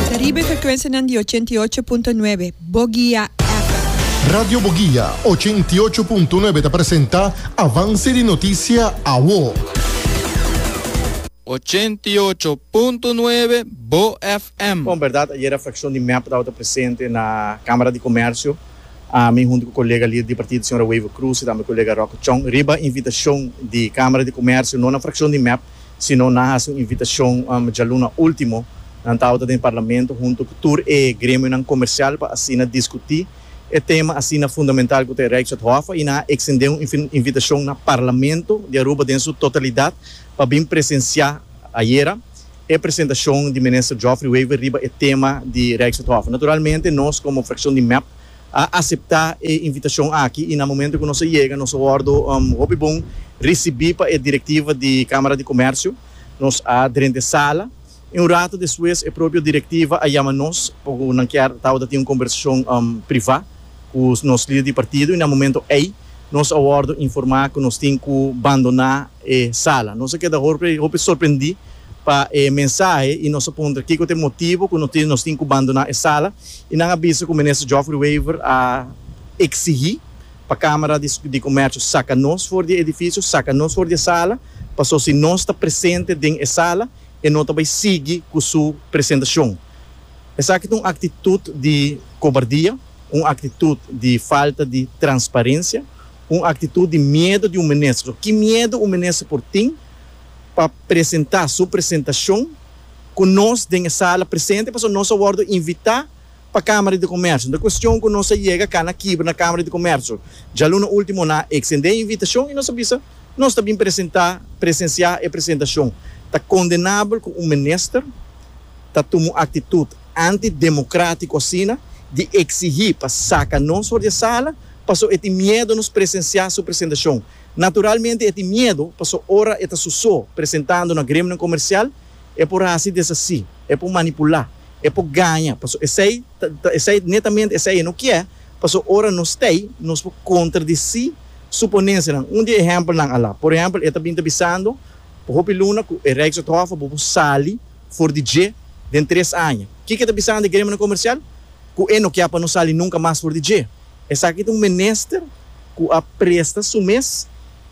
Ta riba e frekuensianan di ochenta i ocho punto nuebe Bogia FM. Radio Bogia ochenta i ocho punto nuebe ta presenta Avanse di Noticia Awo. Ochenta i ocho punto nuebe BoGFM. Bon berdad ayer a fraccion di mep tabata presente na camara di comercio, ami hunto cu colega lider di partido señora Wever Croes y tambe colega Rocco Chong, riba invitacion di camara di comercio no na fraccion di mep Si no nan hasi un invitashon djaluna último, nan tabata den parlamento huntu ku tur e gremionan komersial pa asina diskutí e tema asina fundamental ku ta e Rijkswetthof i nan a eksendé un invitashon na Parlamento di Aruba den su totalidat pa bin presensiá ayera e presentashon di Minister Geoffrey Wever riba e tema di Rijkswetthof. Naturalmente nos komo frakshon di mep, a aseptá e invitashon aki i na momentu ku nos a yega nos a wòrdu hopi bon risibí pa e direktiva di Kámara di Komèrsio. Nos a drenta e sala i un ratu despues e propio direktiva a yama nos pa ku nan kier tabata tin un kombersashon privá ku nos lider di partido i na momentu ei nos a wòrdu informá ku nos tin ku bandoná e sala. Nos a keda hopi hopi sorprendí pa e mensahe i nos a puntra kiko ta e motibu ku nos tin ku bandoná e sala i nan a bisa ku Minister Geoffrey Wever a eksigí pa Kámara di Komèrshio saka nos for di e edifisio, saka nos for di e sala paso si nos ta presente den e sala e no ta bai sigui ku su presentashon. Esaki ta un aktitut di kobardia, un aktitut di falta di transparensia. Un aktitut di miedu di un minister. Ki miedu un minister por tin pa presentá su presentashon ku nos den e sala presente pasobra nos a wòrdu invitá pa Kámara di Komèrsio. Nan kuestion ku nos a yega kana kibra na Kámara di Komèrsio. Djaluna na último nan a eksendé e invitashon i nos a bisa nos ta bin presentá presensiá e presentashon. Ta kondenabel ku un minister ta tuma un aktitut antidemokratiku asina di eksigí pa saka nos for di e sala Paso e tin miedo nos presensiá su presentashon. Naturalmente e tin miedo, paso ora e ta su so presentando na gremionan komersial, e por hasi desasí, e por manipulá, e por gaña, paso esei ta esei netamente esei e no kié, paso ora nos t'ei, nos por kontradisí su ponensianan. Un di e ehèmpelnan a la, por ehèmpel, e ta bin ta bisando pa hopi luna ku e Rijkswethof bo por sali for di dje den tres aña. Kiko e ta bisando e gremionan komersial? Ku e no kié pa no sali nunka mas for di dje. Esaki ta un minister cu a presta su mes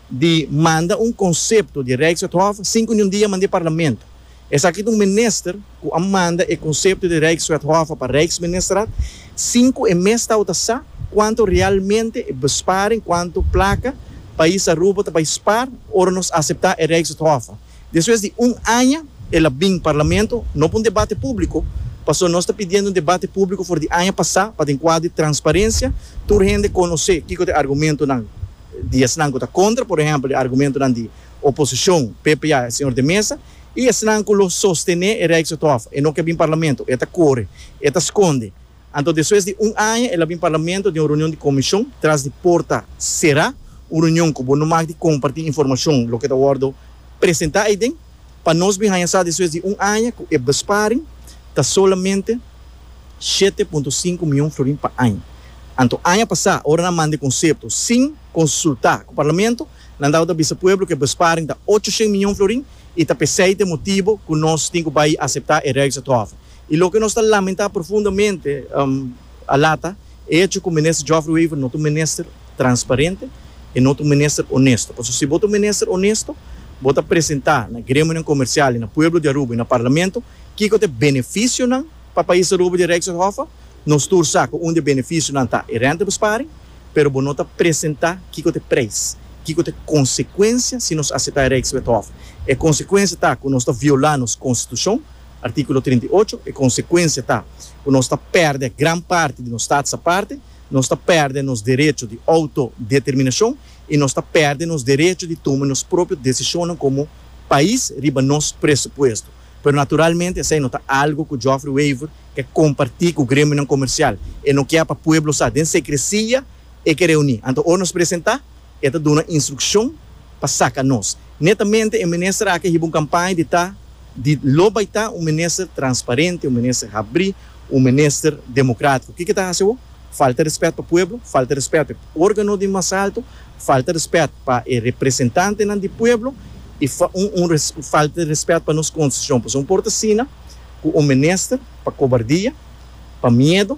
di manda un concepto di Rijkswethof cinco ni un dia manda e Parlamento. Esaki ta un minister cu a manda e concepto di Rijkswethof pa Rijksministerraad sin cu e mes tawata sa cuanto realmente e besparing, cuanto placa pais Aruba ta bay spaar ora nos acepta e Rijkswethof. Despues di un aña el a bin Parlamento, no pa un debate público, pasobra nos ta pidiendo un debate público for di aña pasá pa den cuadro di transparencia tur hende conocé kico ta e argumentonan di esnan cu ta contra, por ehempel e argumentonan di oposicion, ppa, e señor de Meza, y esnan cu lo sostené e Rijkshof. E no ke bin Parlamento, e ta core, e ta sconde. Anto despues di un aña el a bin Parlamento den un reunion di Comishon tras di porta sera, un reunion cu bo no mak di comparti informacion loke ta wordo presenta aiden, pa nos bin haña sa despues di un aña cu e besparing ta solamente shete punto sinku mion florin pa aña. Anto aña pasa, ora nan manda e concepto sin consulta cu Parlamento, nan tabata bisa pueblo cu e besparing ta ocho shent mion florin y ta pesey ta e motibo cu nos tin cu bay acepta e Rijksathof I loke nos ta lamentá profundamente a lata e echo ku Minister Geoffrey Wever no ta un minister transparente, e no ta un minister onesto. Pasobra si bo ta un minister onesto, bo ta presentá na gremionan komersial i na pueblo di Aruba i na Parlamento kiko ta e benefisionan pa pais Aruba di Rijkshof. Nos tur sa ku un di e benefisionan ta e rentebesparing, pero bo no ta presentá kiko ta e prijs, kiko ta e konsekuensia si nos aseptá e Rijkswethof. E konsekuensia ta ku nos ta violá nos konstitushon. Artíkulo trinta i ocho, E konsekuensia ta ku nos ta pèrdè gran parti di nos stats aparte, nos ta pèrdè nos derecho di outodeterminashon i nos ta pèrdè nos derecho di tuma nos propio desishonnan komo pais riba nos presupuesto. Pero naturalmente esei no ta algu ku Joffrey Wever ke kompartí ku gremionan komersial. E no kier pa pueblo sa den sekresia. e ke reuní. Anto ora nos presentá, e ta duna instrukshon pa saka nos. Netamente e minister aki a hiba un kampaña di ta di lo bai ta un minister transparente, un minister habrí, un minister demokratiko. Kiko e ta hasi awo? Falta rèspèt pa pueblo, falta rèspèt pa e órgano di mas alto, falta rèspèt pa e representantenan di pueblo i falta rèspèt pa nos konstitushon. Pasobra no por ta asina ku un minister pa kobardia, pa miedu.